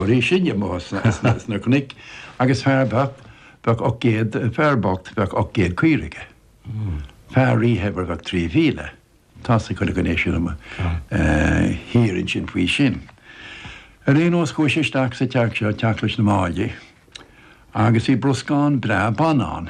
Bhí siad amuigh sna cnoic agus fear bocht, bheadh ocht gcéad, fear bocht, bheadh ocht gcéad caora aige. Fear rí-shaibhir bheadh trí mhíle. Tá's ag chuile dhuine sin amuigh thiar ansin faoi sin. Ar aon nós chuaigh sé isteach sa teach seo, teach leis na Máillí, agus bhí bruscán breá ban ann.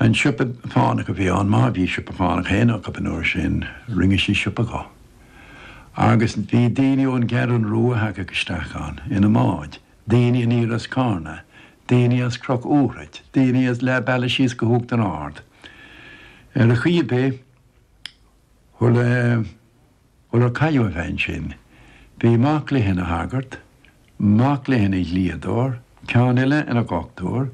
An siopa fánach a bhí ann, má bhí siopa fánach féin acu an uair sin, rinne sí siopa dho. Agus bhí daoine ón gCeathrún Rua a thagadh isteach ann ina mbáid, daoine aniar as Cárna, daoine as Croc Úraid, daoine as leath bealaigh síos go hUachtar Ard. Ar chaoi ar bith, shula. Shular cailleadh an bhean sin. Bhí mac léi ina shagart, mac léi ina dhlíodóir, ceann eile ina dhochtúir.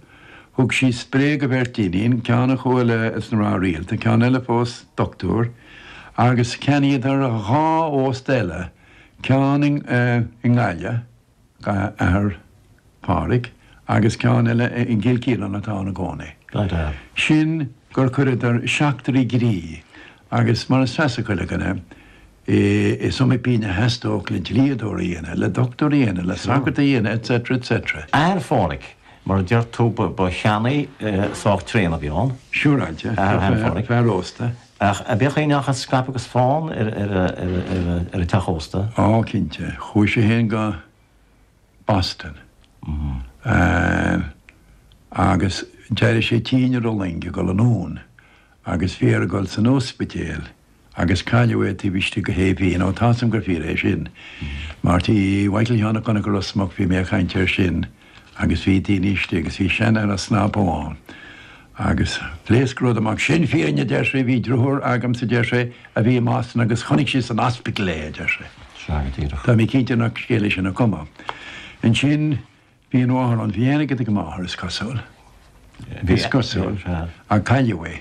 Thug sí spré go bheirt iníon, ceann a chuaigh leis na mná rialta, ceann eile phós dochtúir, agus cheannaíodar dhá ósta eile, ceann i nGaillimh, D'athair Phádhraic, agus ceann eile i gCill Ciaráin atá ann i gcónaí. Sin gur chuireadar seachtraí groí agus mar is feasach go chuile dhuine, is iomaí pínn a theastódh le dlíodóir a dhéanamh, le dochtúir a dhéanamh, le sagart a dhéanamh, etc. etc. Athair Phádhraic, mar a deir tú, ba cheannaí sách tréan a bhí ann. Siúráilte, fear ósta. Ach bíodh go ndeachaigh scaipeadh agus fán ar an teach ósta. Ó, cinnte. Chuaigh sé féin go Boston agus d'éirigh sé tinn ar an loing ag dul anonn agus bhí air a dhul san ospidéal agus cailleadh é taobh istigh de shé mhí, nó tá 'sam gur fíor é sin. Mar tí Mhichael Sheáin Uí Chonaire Ros Muc bhí mé a' caint air sin. agus bhí daoine istigh agus bhí seanfhear snap amháin agus phléasc rud amach, sin fírinne a deir sé, bhí driotháir agamsa a deir sé a bhí i mBoston agus chonaic sé san ospidéal é a deir sé. Sea go díreach. Tá mé cinnte nach scéal é sin a cumadh. Ansin bhí an mháthair ann, bhí an-airgead ag an máthair is cosúil, is cosúil, ach cailleadh é.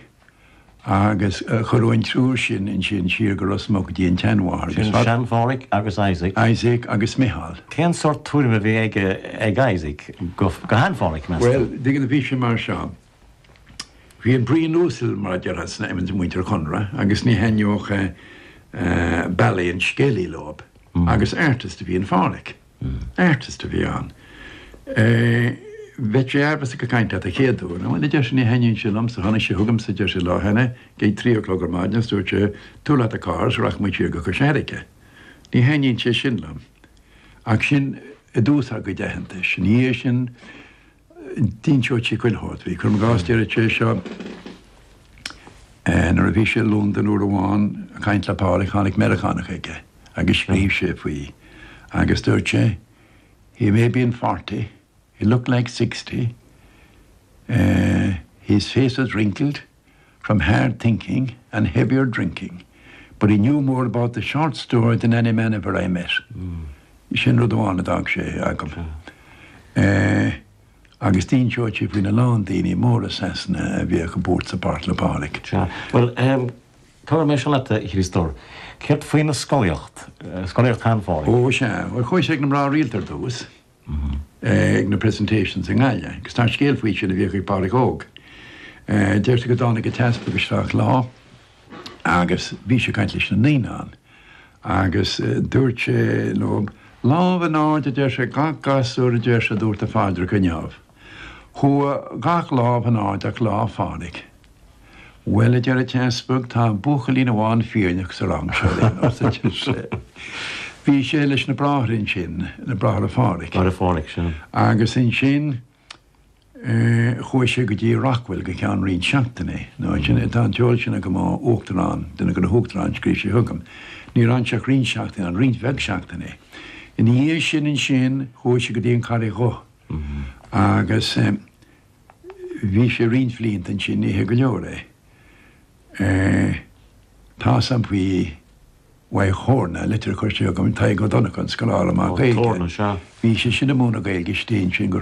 Agus cuireadh an triúr sin ansin siar go Ros Muc dtí an tseanmháthair agus fada. Sin Phádraig agus Isaac. Isaac agus Micheál. Cén sort tuairim a bhí aige ag Isaac go Shean-Phádraig, meas tú? Bhuel, b'fhíor go bhí sé mar seo. Bhí an braon uasal, mar a déarfá, sna veins i muintir Chonroy agus ní thaitneodh bealaí an scéalaí leob agus artist a bhí i Sean-Phádraig. Artist a bhí ann. Bheadh sé aimhleasa ag caint leat an chéad uair. Ó, a deir sé, ní thaitníonn sé liom, so tháinig sé chugamsa, a deir sé, lá cheana, ag trí a chlog ar maidin agus dúirt sé, tabhair leat do charr so rachaidh muid siar go Cois Fhairrge. Ní thaitníonn sé sin liom. Ach sin i dtús ár gcuid aitheantais. Ina dhiaidh sin, d'inseodh sé chuile shórt. Bhí cur i gcás deir sé seo, nuair a bhí sé i Londain uair amháin ag caint le Pádraig tháinig Meiriceánach aige agus scríobh sé faoi agus dúirt sé, He may have been forty, he looked like sixty, his face was wrinkled, from hard thinking and heavier drinking, but he knew more about the short story than any man ever I met'. Sin rud amháin a d'fhág sé agam. Agus d'inseodh sé faoina lán daoine móra Sasana a bhíodh ag buairt sa bpáirc le Pádraig. Sea. Bhuel, tabharfaidh mé seo leat, a Chríostóir. Céard faoina scolaíocht, scolaíocht shean-Phádraig? Ó sea, bhuel chuaigh sé ag na mná rialta ar dtús. ag na presentations i nGaillimh agus tá scéal faoi sin a bhíodh ag Pádraig Óg. Deirtear go dtáinig an t-easpag isteach lá agus bhí sé ag caint leis na naíonáin agus dúirt sé, now, lámh in airde a deir sé, gach gasúr a deir sé a dúirt a phaidreacha inniu. Chuaigh gach lámh in airde ach lámh Phádraig. Bhuel, a deir an t-easpag, tá buachaillín amháin fírinneach sa rang seo linn, arsa seisean. Bhí sé leis na bráithre ansin, na bráithre Phádhraic. Bráithre Phádhraic, sin. Agus ansin chuaigh sé go dtí Rockwell go ceann roinnt seachtainí. Nó sin é, tá an t-eolas sin agam ó Uachtarán, duine de na hUachtaráin, scríobh sé chugam. Ní raibh ann ach roinnt seachtainí ann, roinnt bheag seachtainí. Ina dhiaidh sin ansin chuaigh sé go dtí an Charraig Dhubh. Agus bhí sé roinnt bhlianta ansin, oíche go leor é. Tá san faoi Mhaigh Thorna, litir curtha chugam ag Tadhg Ó Donncha, an scoláire maith Gaeilge. Bhí sé sin ag múineadh Gaeilge istigh ansin go.